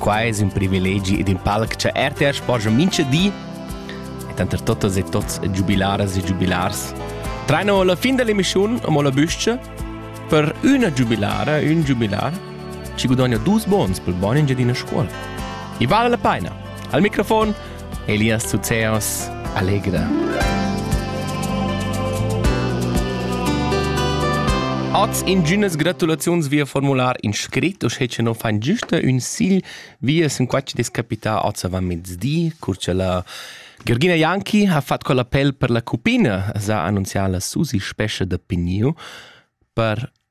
Quai es ün privilegi ed ün palc cha RTR sporgia mincha di e tanter totas e tots giubilaras e giubilars traino la fin dell'emissiun amo la büscha per üna giubilara, ün giubilar chi gudogna dus bons pel bön in Giadina Scuola. I vale la paina! Al microfon Elias Zuzeos, Allegra. Oz ingünas gratulaziuns via formular in scrit, uschè che non fan giusta un sigl via sen qua che descapita oz avant mezdi, cur che la Georgina Janki ha fatto con l'appel per la cupina, sa annunzià la Susi Spescha da Pigniu per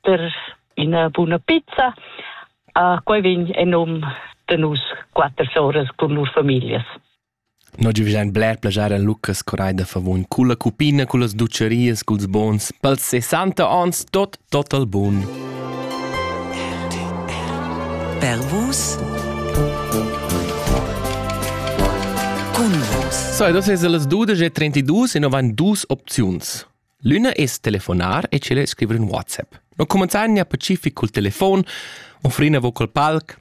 per ina buna pizza. Uh, quei vegn en num de nus quater soras cun lur familias. Noi giuvigiain bler plagiar en Lucas Corai da Favon cu la cupina, cu las ducerias, culs bons, pels 60 ans, tot, tot al bun. Per vus Cun vus. So, das ist alles 12 e 32 e noch waren dus Options. L'üna es telefonar e tschella es scriver ün WhatsApp. No cumanzagna pacific cul telefon, offrin avo col palc,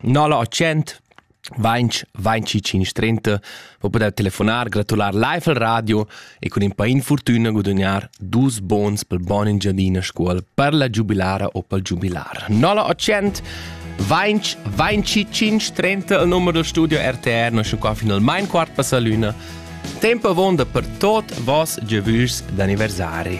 0800 20 25 530 per poter telefonar, gratular live al radio e cun in pa infortun guadagnar dus bons pel bon Engiadina scuol per la giubilara o pel giubilar. 0800 20 25 30 il numero del studio RTR, noi siamo qua fino al mein quart passa l'una. Temp avonda per tot voss giavüschs d'anniversari.